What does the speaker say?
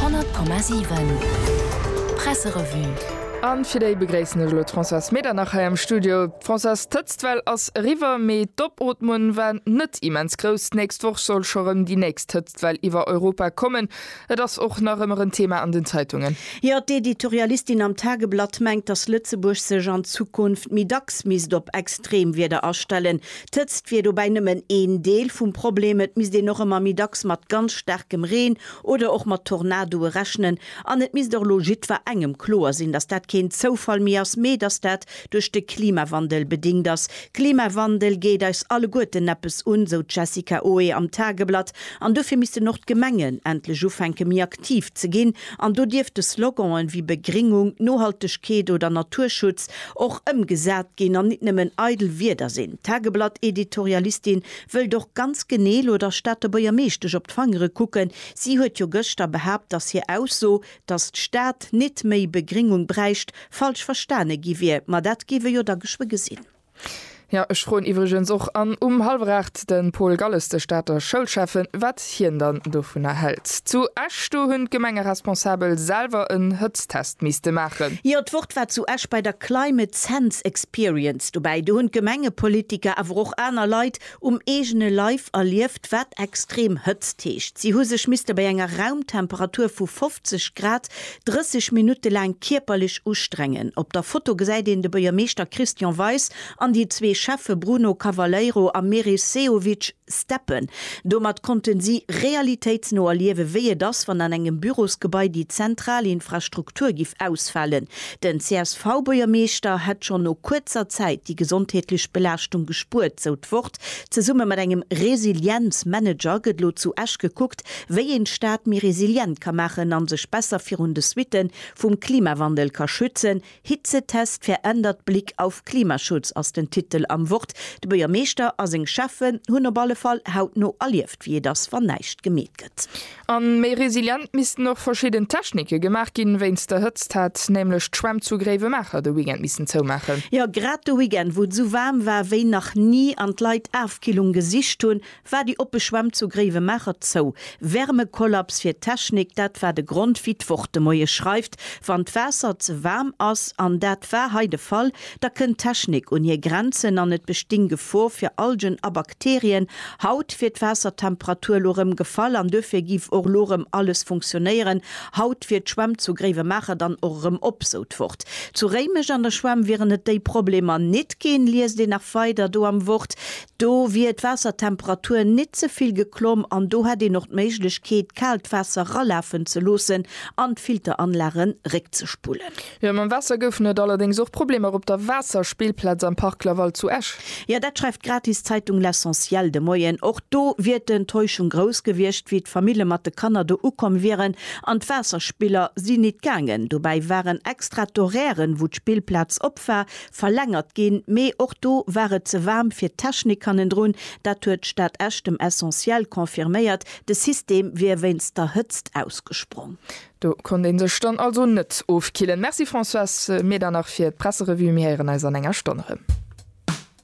100,7 Presserevue An fir déi begréissen ech elo d'Françoise Medernach hei am Studio. Françoise, d'Hëtztwell ass eriwwer, mee d'Opootmen war net immens grouss. D'nächst Woch soll scho rëm déi nächst Hëtztwell iwwer Europa kommen. Et ass och nach ëmmer en Thema an den Zeitungen. Jo, d'Editorialistin am Tageblatt mengt, datt Lëtzebuerg sech an Zukunft méi dacks misst op Extremwieder astellen. D'Hëtzt wier dobäi nëmmen een Deel vum Problem. Et misst een och ëmmer méi dacks mat ganz staarkem Reen oder och mat Tornadoe rechnen. An et misst och elo jiddwer engem kloer sinn, datt dat keen Zoufall méi ass, mee datt dat duerch de Klimawandel bedéngt ass. Klimawandel geet eis alleguerten eppes un, sou d'Jessica Oe am Tageblatt. An dofir missten och d'Gemengen endlech ufänke méi aktiv ze ginn An do dierfte Sloganen wéi Begringung, Nohaltegkeet oder Naturschutz och ëmgesat ginn an nit nëmmen eidel Wierder sinn. D'Tageblatt-Editorialistin wëllt och ganz genee elo der Stater Buergermeeschtesch op d'Fangere kucken. Si huet jo gëschter behaapt, datt hir Ausso, datt d'Stad nit méi Begringung bräicht, falsch verstane gi wier. Ma dat géif ee jo da geschwë gesinn. Jo, ech froen iwwregens och an um hallwer 8 den Paul Galles, de Stater Schoulschäffen, wat hien dann dovunner hält. Zu Esch, do hunn d'Gemengeresponsabel selwer en Hëtztest misste maachen. Jo, d'Wort war zu Esch bei der Climate Sense Experience dobäi. Do hunn d'Gemengepolitiker, awer och aner Leit Um eegene Leif erlieft, wat extrem Hëtzt heescht. Si hu sech misste bei enger Raumtemperatur vu 50 Grad 30 Minutte laang kierperlech ustrengen. Op der Foto gesäit een de Buergermeeschter Christian Weis an déi zwee Schäffe Bruno Cavaleiro a Meris Sehovic steppen. Domat konnten si realitéitsno erliewen, wéi et ass, wann an engem Bürosgebai déi zentral Infrastruktur giff ausfalen. Den CSV-Buergermeeschter hätt schonn no kuerzer Zäit déi gesondheetlech Belaaschtung gespuert, sou d'Wort. Zesumme mat engem Resilienz-Manager gëtt elo zu Esch gekuckt, wéi een d'Stad méi resilient ka maachen a sech besser virun de Suitte vum Klimawandel ka schützen. Hitzetest, Verändert Blick auf Klimaschutz ass den Titel am Wort. De Buergermeeschter a seng Schäffen hunn op alle Fall hautno erlieft, wéi et ass, wann näischt gemeet gëtt. A méi resilient missten och verschidden Technike gemaach ginn. Wéinst der Hëtzt hätt nämlech d'Schwämm zu Gréiwemaacher de Weekend missen zoumaachen. Jo, grad de Weekend, wou et esou waarm war wéi nach ni an d'Leit Afkillung gesicht hunn, war déi oppe Schwämm zu Gréiwemaacher zou. Wärmekollaps fir d'Technik, dat war de Grond, wéi d'Wort de Moie schreift, wann d'Waasser ze waarm ass. An dat war hei de Fall, Da kënnt d'Technik un hir Grenzen an et bestinn Gefor fir Algen a Bakterien. Haut wier d'Waassertemperatur elo rëm gefall an duerfir géif och elo rëm alles funktionéieren. Haut wier d'Schwämm zu Gréiwemaacher dann och erëm op, sou d'Wort. Zu Réimech an der Schwämm wieren et déi Problemer nit ginn, liest een nach weider do am Wort. Do wier d'Waassertemperatur nit ze vill geklomm an do hätt een och d'Méiglechkeet, kaalt Waasser ralafen ze loossen an d'Filteranlage réckzespullen. Jo, mam Waasser goufen et allerdéngs och Problemer op der Waasserspillplaz am Parc Laval zu Esch. Jo, dat schreift d'gratis Zeitung L'Essentiel de Moien. Och do wier d'Enttäuschung grouss gewiescht, wéi d'Famille mat de Kanner do ukomm wieren an d'Waasserspiller si nit gaangen. Dobäi waren extra d'Horairen, wou d'Spillplaz op war, verlängert ginn, mee och do war et ze waarm fir d'Technik hannendrun. Dat huet d'Stad Esch dem Essentiel confirméiert. De System wier wéinst der Hëtzt ausgesprong. Do konnt een sech dann also net ofkillen. Merci Françoise, mir dann nach fir d'Presserevue. Mir héieren eis an enger Stonn erëm.